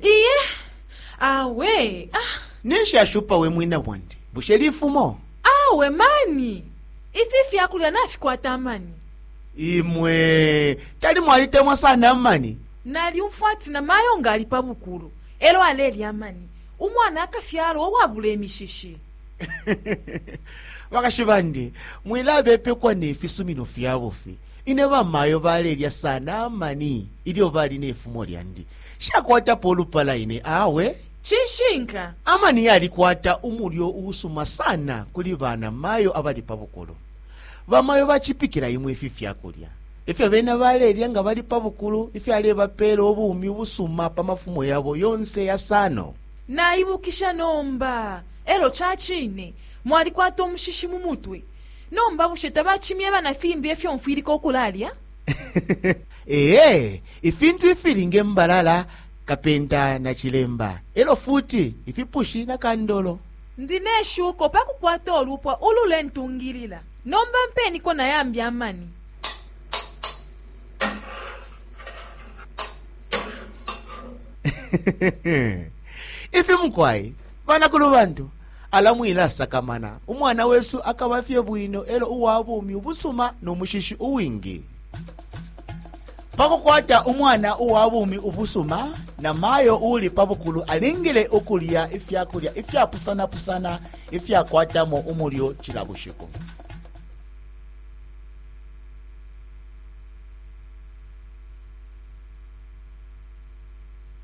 iye awe ah, ninshi ashupa we mwina bwandi bushe lifumo awe mani ifi fyakulya nafikwata amani imwe tali mwalitemwa sana amani nalyumfwa ati na mayo nga ali pa bukulu elo alelya amani umwana akafyalwa owabula emishishi bakashi bandi mwilabepekwa nefisumino fyabufi Ine bamayo balelya sana amani ilyo bali ne fumo lyandi. Nshakwatapo ulupala ine awe. Cishinka. Amani yalikwata umulyo uusuma sana kuli bana mayo abali pa bukulu. Bamayo bacipikila imwe ifi fya kulya ifyo bena balelya nga bali pa bukulu ifyalebapeela ubumi ubusuma pa mafumo yabo yonse yasano. Naibukisha nomba. E lyo ca cine mwalikwata umushishi mu mutwe. Nomba bushe tabacimyeba na fimbi efyo mfwilika ukulalya? Eee, ifintu ifili nge mbalala, kapenta na cilemba, elo futi ifipushi na kandolo. Ndi ne shuko pa kukwata ulupwa ulule ntungilila. Nomba mpeniko na yambi amani. Ifi mukwai, banakulu bantu. Ala mwilasakamana, umwana wesu akaba fye bwino e lyo uwa bumi ubusuma no mushishi uwingi. Pa kukwata umwana uwa bumi ubusuma, namayo uuli pa bukulu alingile ukulya ifya kulya ifyapusanapusana ifyakwatamo umulyo cila bushiku.